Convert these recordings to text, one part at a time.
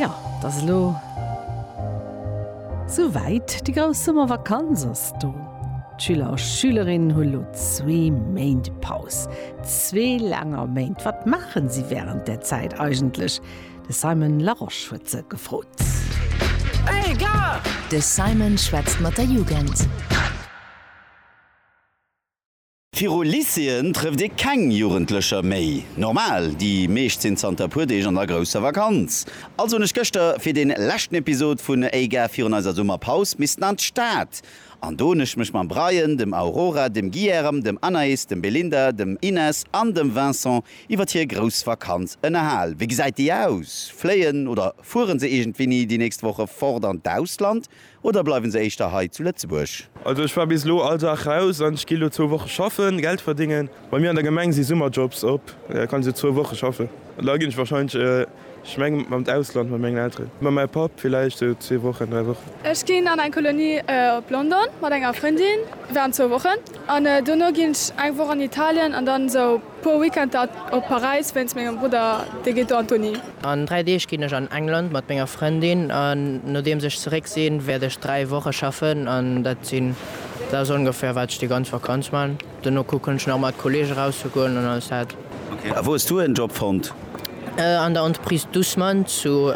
Jo, et ass elo sou wäit, déi grouss Summervakanz ass do. D'Schüler a Schülerinnen hu lo zwee Méint Paus, zwee laanger Méint. Wat maachen si wärend där Zäit eigentlech? De Simon Larosche huet se gefrot. De Simon schwätzt mat der Jugend. Viru Lycéeën trëfft ee keng Jugendlecher méi. Normal, déi meescht sinn zanter e puer Deeg an der grousser Vakanz. Also hunn ech gëschter fir dee leschten Episod vun Ey Gär virun eiser Summerpaus missten an d'Stad. An do hunn ech mech mam Bryan, dem Aurora, dem Guilherme, dem Anaïs, dem Belinda, dem Inès an dem Vincent iwwert hir grouss Vakanz ënnerhal. Wéi gesäit déi aus? Fléien oder fuere se iergendwéini déi nächst Woche fort an d'Ausland? Oder bleiwen se éischter hei zu Lëtzebuerg? Also ech war bis elo all Dag raus an ech gi elo zwou Woche schaffen, Geld verdéngen. Bei mir an der Gemeng si Summerjobs op, da kann ech elo zwou Woche schaffen an da ginn ech wahrscheinlech, ech mengen an d'Ausland mat mengen Elteren, mat mengem Papp villäicht sou zwee Wochen, dräi Wochen. Ech ginn an eng Kolonie op London mat enger Frëndin während zwou Wochen an dono ginn ech eng Woch an Italien an dann esou. Puer Weekender op Paräis wéinst mengem Brudder, dee geet do an d'Uni. An 3 Deeg ginn ech an England mat menger Frëndin an nodeems ech zeréck sinn, wäert ech 3 Woche schaffen an dat sinn, dat ass ongeféier wat ech déi ganz Vakanz maan. Dono kucken ech nach mat Kollege rauszegoen an alles dat. Ok, a wou hues du en Job fonnt? An der Entreprise Dussmann zu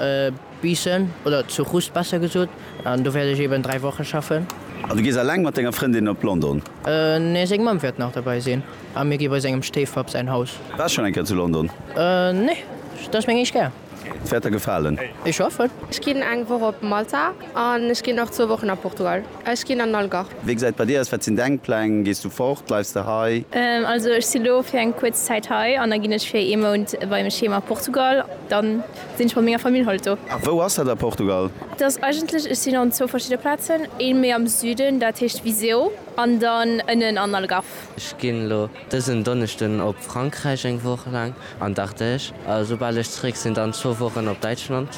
Biissen, oder zu Rust besser gesot, an do wäert ech eben 3 Wochen schaffen. An du gees alleng mat denger Frëndin op London? Nee, seng Mamm wäert nach derbäi sinn, a mir gi bei sengem Stéifpapp säin Haus. Waars schonn eng Kéier zu London? Nee, dat ass meng éischt Kéier. Et wäert der gefalen. Ech hoffen. Ech ginn eng Woch op Malta, an ech ginn och zwou Wochen a Portugal. Ech ginn an den Algarve. Wéi gesäit et bei dir aus? Wat sinn deng Pläng? Gees du fort? Bleifs de hei? Also ech si lo fir eng kuerz Zäit hei, an da ginn ech fir ee Mount beim Schema Portugal. Dann. Sinn ech mat menger Famill haut do. A wou ass dat a Portugal? Dat ass eigentlech, ech sinn an zwou verschidde Plazen, ee méi am Süden, dat heescht Viseu, an dann ënnen an Algarve. Ech ginn elo dësen Donneschden op Frankräich eng Woch laang an d'Ardèche, a soubal ech zeréck sinn, dann zwou Wochen op Däitschland,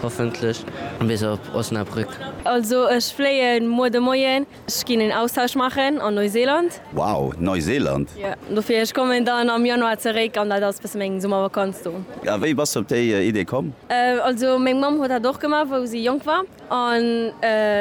hoffentlech bis op Osnabrück. Also ech fléien muer de Moien. Ech ginn een Austausch maachen an Neuseeland. Wow, Neuseeland! Jo, dofir. Ech kommen dann am Januar zeréck an dat ass bësse meng Summervakanz do. A wéi bass de op déi Idee komm? Also meng Mamm huet dat och gemaach, wou si jonk war. An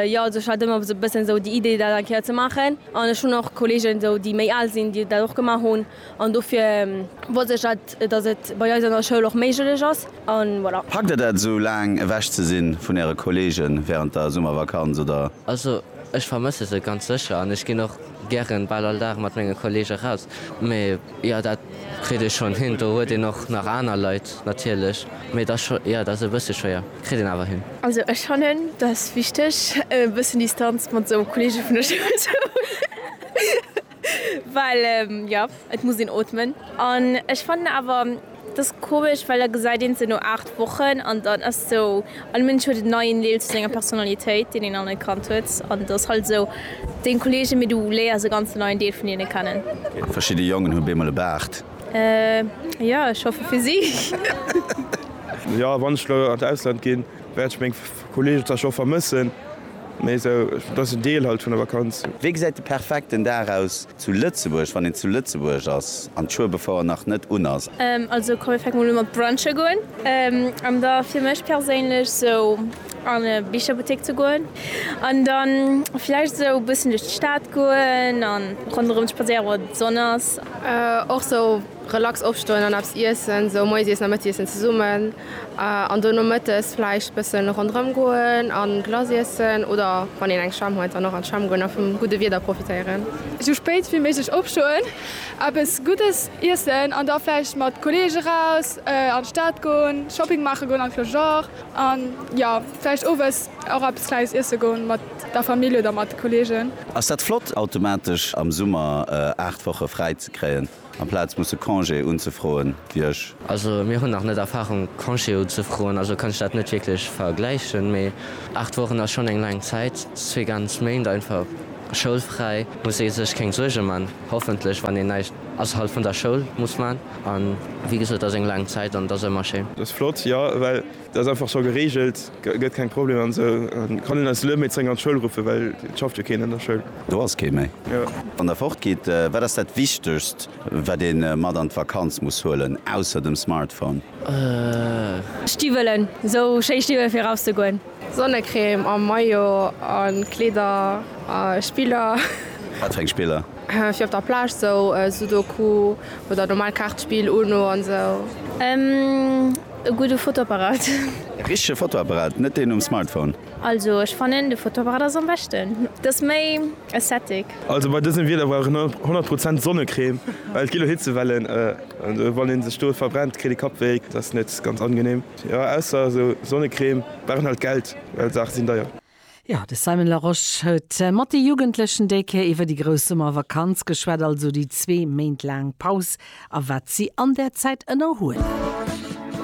jo, also ech hat ëmmer esou bëssen esou déi Idee, dat eng Kéier ze maachen. An ech hunn och Kolleegen esou, déi méi al sinn, déi dat och gemaach hunn. An dofir wollt ech dat, dass et bei eis an der Schoul och méiglech ass. An voilà. Packt der dat esou laang ewech ze sinn vun äre Kollegen während der Summervakanz oder? Also ech vermësse se ganz sécher an ech ginn och gären bal all Dag mat menge Kollegen raus. Mee jo dat kritt ee schonn hin. Do huet een och nach aner Leit natierlech. Mee et ass scho, jo et ass e bësse schwéier, kritt een awer hin. Also ech fannen dass wichteg e bëssen Distanz mat esou Kollege vun der Schoul ze hunn. Well jo, et muss een ootmen. An ech fannen awer, et ass komesch, well da gesäit een se no 8 Wochen an dann ass esou, all Mënsch huet en neien Deel vu senger Personalitéit, deen een an e Kand huet an et ass halt esou, deng Kolleegen, mee du léiers e ganzen neien Deel vun hinne kennen. Verschidde Jongen hu beemol e Baart. Jo, ech hoffe fir si. Jo, wann ech elo an d'Ausland ginn, wäert ech meng. Kollegen zwar scho vermëssen, mee esou dass en Deel halt vun der Vakanz. Wéi gesäit de perfekten Dag aus zu Lëtzebuerg, wann een zu Lëtzebuerg ass an d'Schuebefoire nach net un ass? Also komm mir fänke mol u mat brunche goen an da fir mech perséinlech sou an e Bicherbuttek ze goen an dann vläicht sou bëssen duerch d'Stad goen an ronderëm spadséieren wann d'Sonn ass. Och sou Relax opstoen an eppes iessen, esou Moiesiessen a Mëttiessen zesummen an duerno Mëttes vläicht bëssen ronderëm goen a Glace iessen oder wann een eng Schwämm huet dann och an d'Schwämm goen a vum gudde Wieder profitéieren. Esou spéit ewéi méiglech opstoen, eppes Guddes iessen an da vläicht mat Kolleege raus an d'Stad goen, Shopping maache goen an vläch och an jo vläicht Owes och eppes Kleines iesse goen mat der Famill oder mat de Kolleegen. Ass dat flott automatesch am Summer 8 Woche fräi ze kréien? Amplaz musse Congé unzefroen, wier ech. Also mir hunn nach net Erfahrung Congé unzefroen, also kann ech dat net wierklech vergläichen. Mee 8 Wochen ass schonn eng laang Zäit, zwee ganz Méint einfach schoulfräi, muss ee sech keng Suerge man, hoffentlech, wann een näischt ausserhalb vun der Schoul muss man. An wéi gesot, ass eng laang Zäit an et ass ëmmer schéin. Ass flott, jo, well Dat ass einfach scho gereegelt, gëtt keng Problemer an esou. Kann een eis elo méi zrénk an d'Schoul ruffen, well et schafft jo keen an der Schoul. Do ass kee méi. Wann der fort gitt, wat ass dat wichtegst wat ee mat an d'Vakanz muss huelen, ausser dem Smartphone? Stiwwelen, esou schéi Stiwwelen fir eraus ze goen. Sonnecrème a Maillot a Kleeder a Spiller. Wat fir eng Spiller? Fir op der Plage, esou Sudoku oder normal Kaartspill, Uno an esou. E gudde Fotoapparat. E richtege Fotoapparat, net deen um Smartphone. Also ech fannen de Fotoapparat ass am beschten, et ass méi aesthetic. Also bei dësem Wieder brauch een 100 Prozent Sonnecrème, well et gi lo Hitzewellen an wann een sech do verbrennt kritt ee Kappwéi, dat ass net ganz angenehm. Jo ausser esou Sonnecrème brauch een halt Geld, well Saache sinn deier. Jo, de Simon Larosche huet mat de Jugendlechen déi Kéier iwwer déi grouss Summervakanz geschwat, also déi zwee Méint laang Paus a wat si an där Zäit ënnerhuelen.